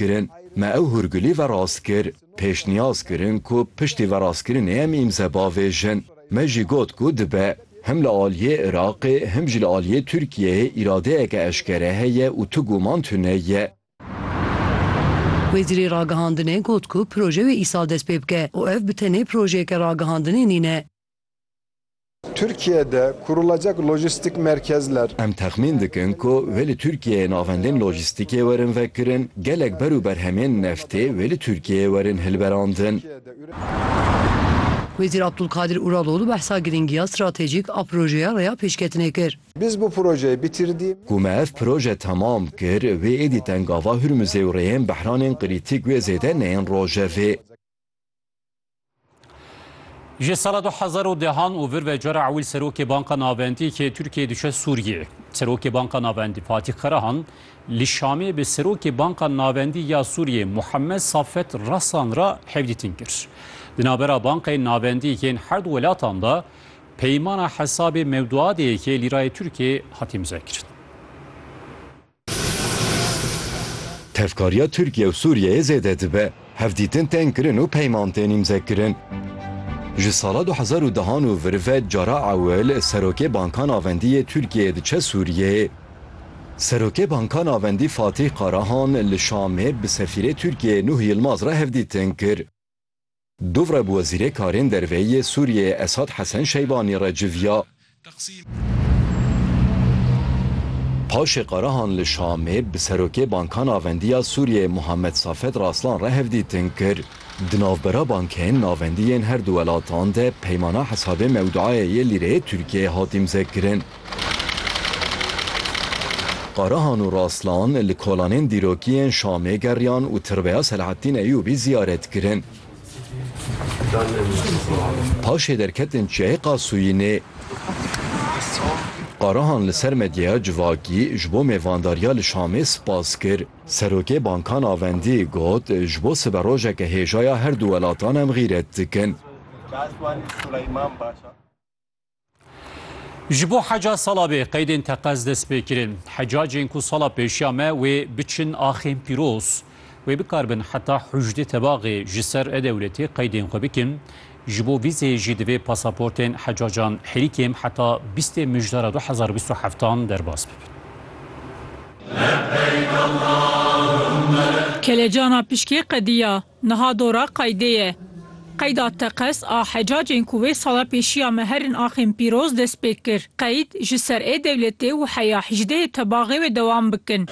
rastkirin, me ew hûrgulî verast kir. Pêşniyaz kirin ku piştî verastkirinê em îmze bavêjin. Me jî got ku dibe. Him li aliyê Iraqê him jî li aliyê Tirkiyeyê îradeyeke eşkere heye û tu guman tune ye. Wezîrê Ragihandinê got ku proje wê îsal dest pê bike û ev bi tenê projeyeke ragihandinê nîne. Tirkiye de kurulacak lojistik merkezler. Em texmîn dikin ku wê li Tirkiyeyê navendên lojistikê werin vekirin, gelek ber û berhemên neftê wê li Tirkiyeyê werin hilberandin. Wezîr Abdulkadir Uraloğlu behsa girîngiya stratejîk a projeya rêya pêşketinê kir. Biz bu projeyi bitirdi. Ku me ev proje temam kir, wê êdî tengava Hurmuzê û rêyên behranên krîtîk wê zêde neyên rojevê. Ji sala du hezar û dehan û vir ve cara ewil serokê Banka Navendîkê Tirkiyê diçe Sûriyê. Serokê Banka Navendî Fatîh Karahan li Şamê bi serokê Banka Navendî ya Sûriyê Muhammed Safet Rasan ra hevdîtin kir. Di navbera bankayên navendî yên her du welatan de peymana hesabê mewduadê yekê lîrayê Tirkiyê hat îmzekirin. Tevkariya Tirkiye û Sûriyeyê zêde dibe, hevdîtin tên kirin û peyman tên îmzekirin. Ji sala du hezar û deh an û vir ve cara ewil Serokê Banka Navendî yê Tirkiyeyê diçe Sûriyeyê. Serokê Banka Navendî Fatîh Karahan li Şamê bi sefîrê Tirkiyeyê Nuh Yilmaz re hevdîtin kir. Dûvre bi Wezîrê Karên Derveyî yê Sûriyeyê Esad Hesen Şeybanî re civiya. Paşê Karahan li Şamê bi Serokê Banka Navendî ya Sûriyeyê Muhammed Safed Raslan re hevdîtin kir. Di navbera bankên navendî yên her du welatan de peymana hesabê mewduayê yê lîreyê Tirkiyeyê hat îmzekirin. Karahan û Raslan li kolanên dîrokiyên Şamê geriyan û tirbeya Selahattîn Eyûbî ziyaret kirin. Paşê derketin Çiyayê Qasûyînê. Karahan li ser medyaya civakî ji bo mêvandariya li Şamê spas kir. Serokê Banka Navendî got, Ji bo siberojeke hêja ya herdu welatan em xîret dikin. Ji bo heca sala bê qeydên teqez dest pê kirin. Hecacên ku sala pêşiya me wê biçin axên pîroz. Wê bikaribin heta hûjdê tebaxê ji ser e-dewletê qeydên xwe bikin. Ji bo vîzê jî divê pasaportên hecacan herî kêm heta bîstê mijdara du hezar û bîst û heft an derbas bibin. Kelejana pişkê qediya Niha dora qeydê ye. Qeyda teqez a hecacên ku wê sala pêşiya me herin axên pîroz dest pê kir. Qeyd ji ser ê dewletê û heya hîjdehê tebaxê wê dewam bikin.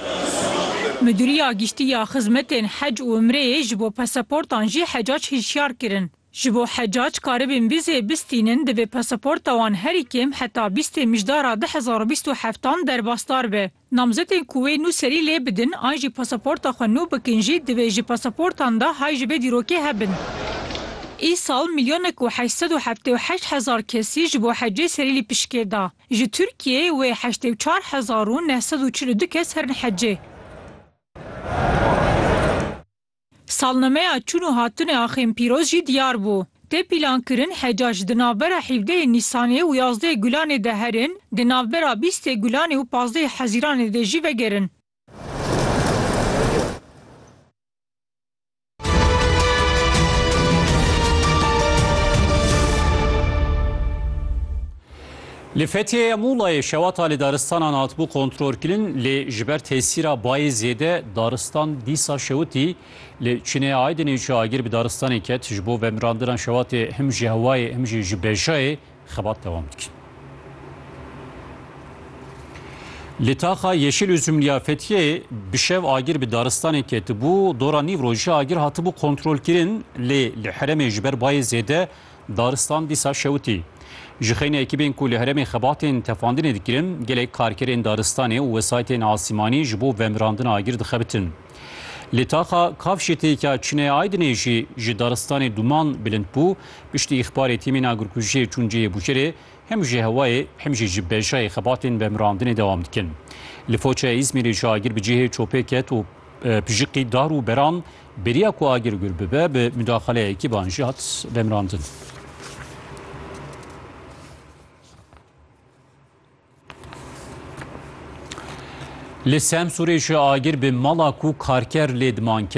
Midûriya Giştî ya Xizmetên Hec û Umreyê ji bo pasaportan jî hecac hişyar kirin. Ji bo hecac karibin vîzeyê bistînin divê pasaporta wan herî kêm heta bîstê mijdara du hezar û bîst û heftan derbasdar be. Namzetên ku wê nû serî lê bidin an jî pasaporta xwe nû bikin jî divê ji pasaportan de hay ji vê dîrokê hebin. Îsal milyonek û heşt sed û heftê û heşt hezar kesî ji bo hecê serî lî pişkê da. Ji Tirkiyeyê wê heştê û çar hezar û neh sed û çil û du kes herin hecê. Salnemeya çûn û hatinê a Xêmpîroz jî diyar bû. Tê pîlankirin heca ji di navbera hevdehê Nîsanê û yazdehê Gulanê de herin, di navbera bîstê Gulanê û pazdehê Hezîranê de jî vegerin. Li Fethiye ya Mulayê şewata li daristanan hatibû kontrolkirin lê ji ber tesîra bayê zêde daristan dîsa şewitî. Li Çinê Aydinê cihagîr bi daristanê ket. Ji bo vemirandina şewatê him ji hewayê him jî ji bejayê xebat dewam dikin. Li taxa Yeşil Üzümlî ya Fethiyeyê bi şev agir bi daristanê ketibû. Dora nîvrojî agir hatibû kontrolkirin lê li heremê ji ber bayê zêde Daristan dîsa şewitî. Ji xeyna ekîbên ku li herêmên xebatên tefandinê dikirin, gelek karkerên daristanê û wesaytên asîmanî ji bo vemirandina agir dixebitin. Li taxa Kavşê têkîa Çinê Aydinê jî ji daristanê duman bilind bû, piştî îxbarê tîmên agirkujiyê çûn cihê bûşerê hem ji hewayê hem jî ji bejayê xebatên vemirandinê dewam dikin. Li Foça Îzmîrê jî agir bi cihê çopê ket û pijiqî dar û beran Bêriya ku agir gul bibe bi mudaxaleyekî ban jî hat demrandin. Li Semsûrê jî agir bi mala ku karker lê diman ket.